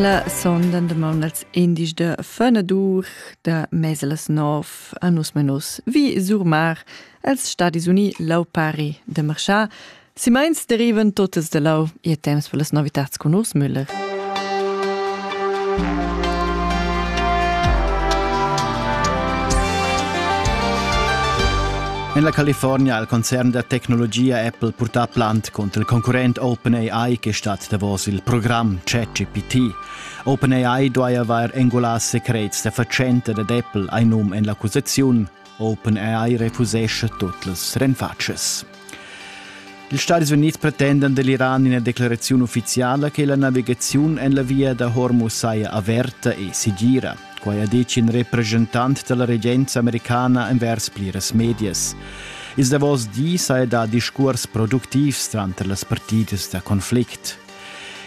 La sonda dumonda als indies da Fenadur da mesa las nov a nus menus vi Surmar als Stadis Uni lau pari de marchar. Si meins derivan totes de lau e temps per las novitats con us Müller. En la California ha il concern da tecnologia Apple purtà plant cunter il concurrent OpenAI che stat davos il program ChatGPT. OpenAI duai avair engulà secrets da fatschenta dad Apple hai num en l'accusaziun. OpenAI refusescha tut las renfatschas. Ils Stati Unids pretendan dell'Iran ina declarazione ufficiale che la navigazione en la via da Hormuz saja averta e sigira. Quai ha ditg in represchentant da la regenza americana envers pliras medias. Ils davos dis ha dà discurs productivs tranter las partidas da conflict.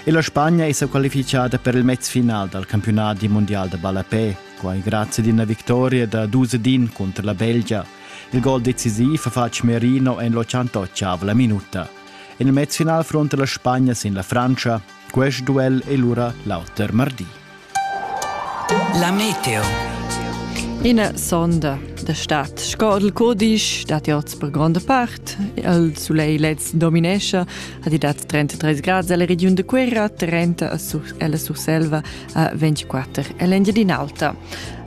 E la Spagna è sa qualifichada per il mezfinal dal campionat mondial da ballapè, quai grazie ad una vittoria da 2-1 contro la Belgia. Il gol decisiv ha fatg Merino en l'88 minuta. En il mezfinal fronta la Spagna sin la Francia. Quest duel è lura l'auter martì. La meteo. Ina sonda da stat sco il codisch dat oz per gronda part. Il sulegl lez dominescha, ha di dat 33 grad alla regiun de Querra, 30 alla Surselva a 24 all'Engiadin'Alta.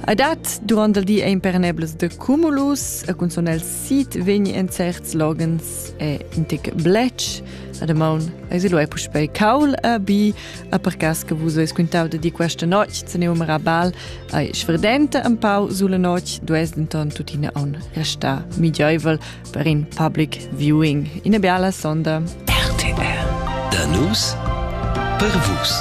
A dat durant il di ein pernebles de cumulus, a cunzon el sit vegni en certs logens e intic blech. A de maun eis il puspei caul a bi, A per cas che vus eis quintau da di questa notg, se ne umera bal, ai sverdenta un pau sulla notg, dues denton tuttina on resta midioivel per in public viewing. Ina biala sonda. RTR. Da nus per vus.